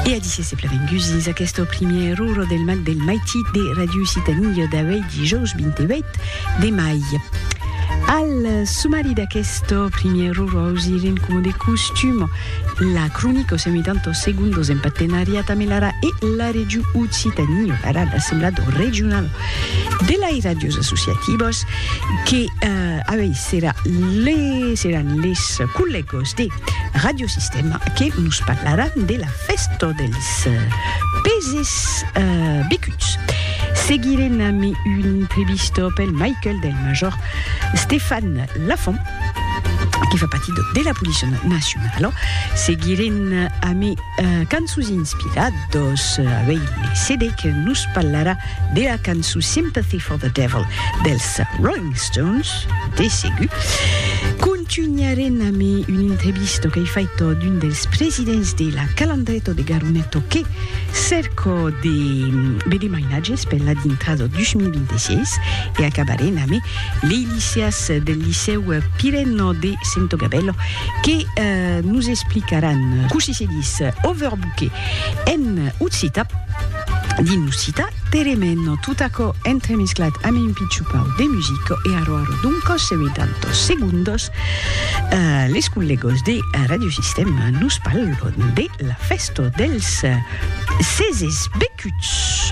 E a disse se plevengusis aqueste primièr ruro del mat del maiti de Ràdio Citania d'auei dijòus 28 de mai. Al sumari d'aqueste primièr ruro ausirem coma de costum la cronica o semitanto segundos en partenariat amb l'ARA e la Regiu Occitania, ara l'Assemblado Regionalo de lai ràdios associativos que avei serà les seràn les collègos de Radiosistèma que nos parlaràn de la fèsta dels peses becuts. Seguirem amb una entrevista pel Michael del major Stefan Lafont, que fa partir de la Polícia Nacionala. Seguirem amb cançons inspiradas, avèi le CD que nos parlarà de la cançon Sympathy for the Devil dels Rolling Stones. De segur. Contunharem amb un entrevista qu'ei faita d'un dels presidents de la Calandreta de Garoneto que cerca de veder mainatges per la dintrada 2026 e acabarem amb lei liceas del Licèu Pirena de Sento Gabèla que nos explicaràn cossí se ditz overbooker en occitan. Dins lo cita Teremeno, tot aquò entremesclat amb un pichupau de musico e arro arro d'un còs e uitantos segundos, les collegos de Radiosistèma nos parlon de la fèsta dels ses esbecuts.